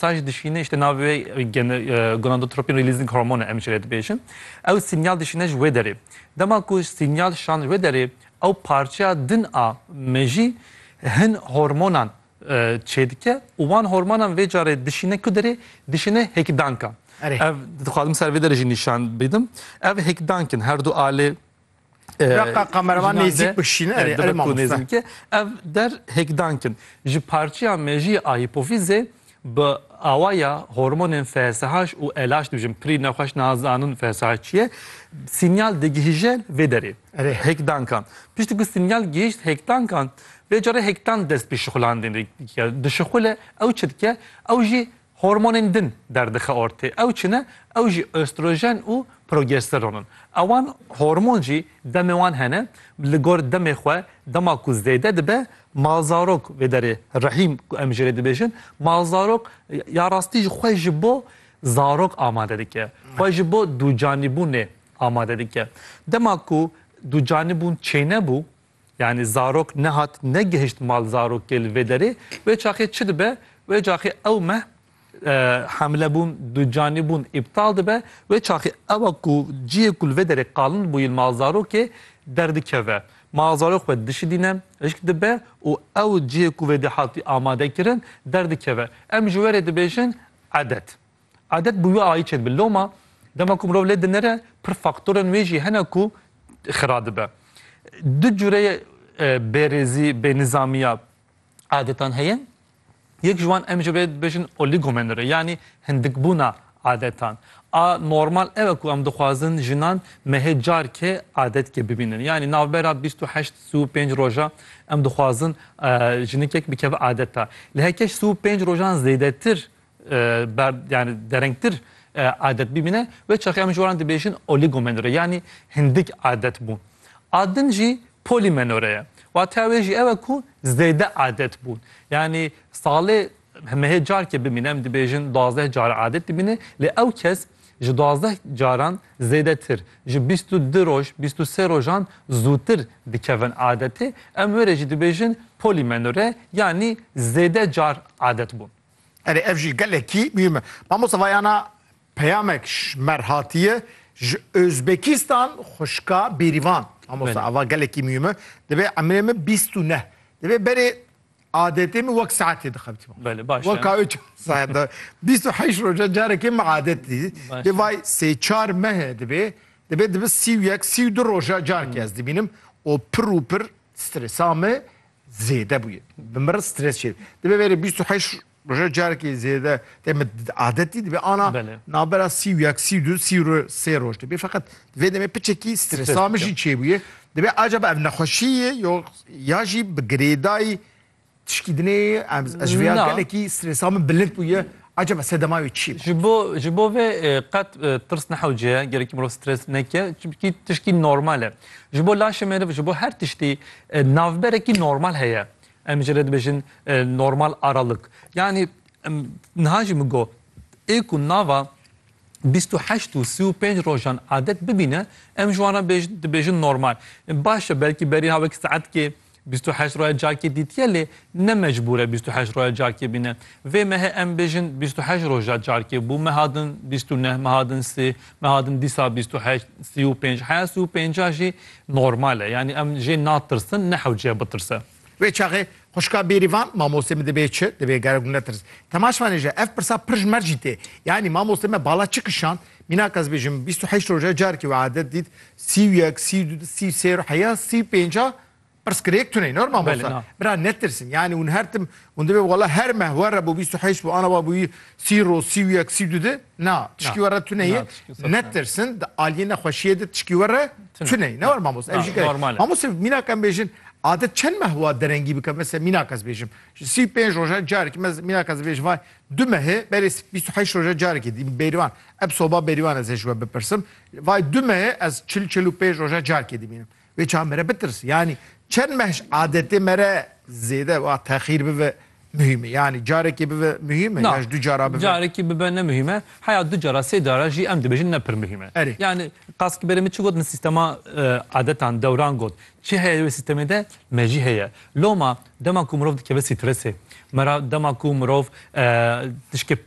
Saj dişîne îşte navê wê gonadotropin releasing hormone em ji rê dibêjin. Ew sînyal dişîne ji wê derê. Dema ku sînyal şan ji wê derê ew parçeya din a mejî hin hormonan çêdike û wan hormonan vê carê dişîne ku derê dişîne hêkdankan. Ev dixwazim ser vê derê jî nîşan bidin. Ev hêkdank in herdu alê. Raka kameraman nêzik bikşîn erê erê nêzik ki ev der hêkdan kin. Ji parçeya mejiyê a hîpofîzê bi awaya hormonên FSH û LH dibijin pirî nexweş nazanin FSH çi ye sînyal digihîje vê derê hêkdankan. Piştî ku sînyal gihîşt hêkdankan vê carê hêkdan dest bi şixulandinê dike. Dişixule ew çi dike ew jî Hormonên din derdixe ortê. Ew çi ne? Ew jî östrojen û progesteron in. Ewan hormon jî demê wan hene. Li gor demê xwe dema ku zêde dibe malzarok vê derê rehîm ku em ji rê dibêjin malzarok ya rastî jî xwe ji bo zarok amade dike. Xwe ji bo dûcanîbûnê amade dike. Dema ku dûcanîbûn çênebû Yanî zarok nehat negihişt mal zarokê li vê derê, wê çaxê çi dibe, wê caxê ew meh hemlebûn, ducanîbûn îptal dibe, wê çaxê ewa ku cihê ku li vê derê qalin bûyî li mal zarokê derdikeve. Mal zarok xwe dişidîne, hişk dibe û ew cihê ku vêdî hatî amadekirin derdikeve. Em ji werê dibêjin edet. Adet bû wî ayî çêdibe. Loma dema ku mirov lê dinere pir faktorên wê jî hene ku xira dibe. Du cure e, bêrêzî, bênizamiya adetan heye. Yek ji wan em ji vê dibêjin oligomenore yanî hindikbûna adetan. A normal ew e ku em dixwazin jinan mehê carke adetkê bibînin. Yanî navbera bîst û heşt sî û pênc roja em dixwazin jinikek bikeve adeta. Li hekeş sî û pênc rojan zêdetir ber yani derengtir adet bimine ve çaxi em ji waran dibêjin oligomenore yani hindik adet bû. Adin jî polimenore ye. Wateya wê jî ew e ku zêde adet bûn. Yani salê hemehê carkê bimîne em dibêjin duazdeh car adet bimîne lê ew kes ji duazdeh caran zêdetir ji bîst û du roj bîst û sê rojan zûtir dikevin adetê em wê rê jî dibêjin polimenore yanî zêde car adet bûn. Erê ev jî gelekî mîm e. Mamosta vayana peyamek ji mer hatiye ji Ozbekistan xuşka bêrîvan. Mamosta ava gelekî mîm e. Divê emrê min bîst û neh. Divê berê adetê min wek saetê dixebitî. Belê baş. Wek ka üç saet. Bîst û heyş roja carekê min adetî. Dê vay sê çar mehe divê. Divê dibi sî û yek sî û du roja carkê ez dibînim. O pir û pir Stresa me zêde bûye. Bi min re stres çêdike. Dibe verê bîst û heşt roje carekê zêde tê min adetî dibe ana navbera sî û yek, sî û du, sî û sê roj dibe. Feqet di vê demê piçekî stresa min jî çêbûye. Dibe acaba ev nexweşî ye yo ya jî bi girêdayî Tişkî dinê em ez ji vê ya Na. gelekî strêsa min bilind bûye. Acaba sedema wê çi ye? Ji bo ji bo vê e, qet e, tirs nehewce ye, gerekî mirov stres neke, çimkî tişkî normal e. Ji bo laşê meriv, ji bo her tiştî e, navberekî normal heye. Em ji re dibêjin e, normal aralık. Yanî em niha jî min got, ê ku nava bîst û heşt û sî û pênc rojan adet bibîne, em ji wan re bêj- dibêjin normal. Baş e belkî berî ha wek saetkê Bîst û heşt roya cakê dîtiye lê ne mecbûr e bîst û heşt roya cakê bîne. Vê mehê em bêjin bîst û heşt roja cakê bû, meha din bîst û neh, meha din sê, meha din dîsa bîst û heşt, sî û pênc. Heya sî û pênca jî normal e. Yanî em jê natirsin, nehewciye bitirse. Vê çaxê xwişka Bêrîvan, Mamostê min dibê çi? Dibê gerek hûn netirs. Temaşvanê ji ev pirsa pir ji mer jî tê. Yanî mamostê me bala çi kişand? Mînak ez bêjim bîst û heşt roje carekê wê adet dît sî û yek, sî û du, sî û sê, heya sî û pênca pirs kir yek tune nor mamosta. Bira netirsin yanî hûn her tim hûn divê wala her meh were bo bîst û heşt bo ana wa bûyî sî roz, sî û yek, sî û du de na tişkî were tune ye netirsin di aliyê nexweşiyê de tişkî were tune ye ne were mamosta ev jî gerek e. Mamosta mînak em bêjin adet çend meh wa derengî bike mesela mînak ez bêjim ji sî û pênc roje carekê mînak ez bêjim vay Du mehê berê bîst û heşt roja carekê dîm bêrîvan. Eb soba bêrîvan ez ê ji we bipirsim. Vay du mehê ez çil çil û pênc roja carekê dîmînim. Wê çav me re bitirse. Yanî çend meh ji adetê me re zêde wa texîr bibe muhîm e. Yanî carekê bibe muhîm e Na, ya ji du cara bibe? carekî bibe ne muhîm e. Heya du cara sê cara jî em dibêjin ne pir muhîm e. Erê. Yanî qas ki berê min çi got min sîstema e, adetan dewran got. Çi heye wê sîstemê de me jî heye. Loma Dema ku mirov dikeve stressê me re, dema ku mirov tişkê pir.